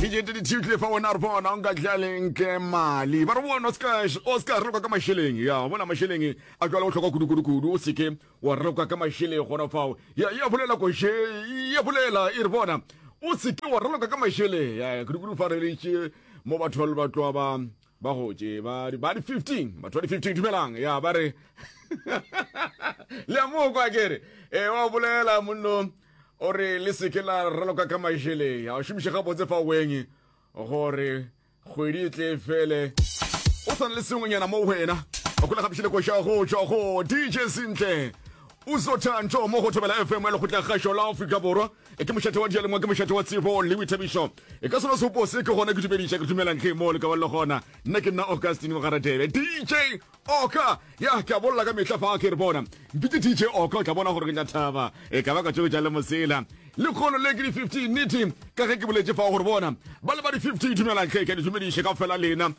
dijete di thiutlile fa wena re bona o nka tlaleng ke mali ba re bona o ska o ska re ka masheleng ya bona masheleng a jwale o tlhoka kudu kudu kudu o seke wa re ka masheleng gona fao ya ya bolela ko she ya bolela e re bona o seke wa re ka masheleng ya kudu kudu fa re le mo batho ba tloa ba ba gotše ba di 15 batho ba di 15 dumelang ya ba re le a moo kwa kere e wa bolela monno o re le seke la raloka ka mašeleng a šomiše gabotse fa weng gore kgwedi e tle fele o swana le sengwenyana mo wena o kgole gapišile koša go tšwa go dj sentle uzotanto mo go thobela fm ya lekgotla kgašo la aforika borwa E ke mošate wa dialengwa ke mošate wa tsebo le boithabišo e ka sona seopo se ke gona ke dumediša ke dumelang ge mo le ka ba le gona nna ke nna augustine mogaradebe dj oka ya ke a bolela ka mehla fa ke re bona mpitse dj oka o tla bona gore ke tla thaba e ka ba ka tšeo tša le mosela lekgolo le ke di-15 nete ka ge ke boletše fa gore bona ba le ba di-15 dumelang ge ke a di dumediše ka fela lena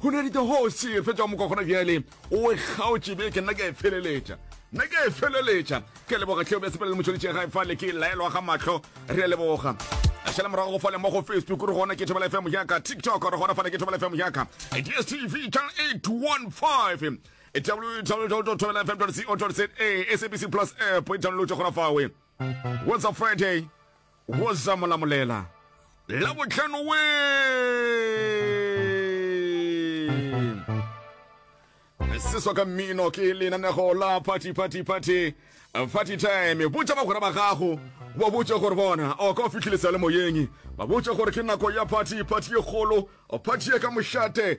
Go ne dite ho se fetša o moka gona bjale o e kgaotše beke nna ke a e feleletša nna ke a e feleletša ke a leboga tlheo bja sepele le motšhonitše gae fa le ke laelwa ga mahlo re a leboga a šala morago go fale mo go facebook re gona ke thobela fm yaka tiktok re gona fale ke thobela fm yaka dstv channel 815 www.thobelafm.co.za sabc plus app e download gona fawe What's up Friday? What's up Molamolela? La botlhano we! Seswa ka mmino ke lenanego la party party party party time botša bagwera ba gago ba botše gore bona o ka o fitlhilisa le moyeng ba botše gore ke nako ya party party ye kgolo party ye ka mošate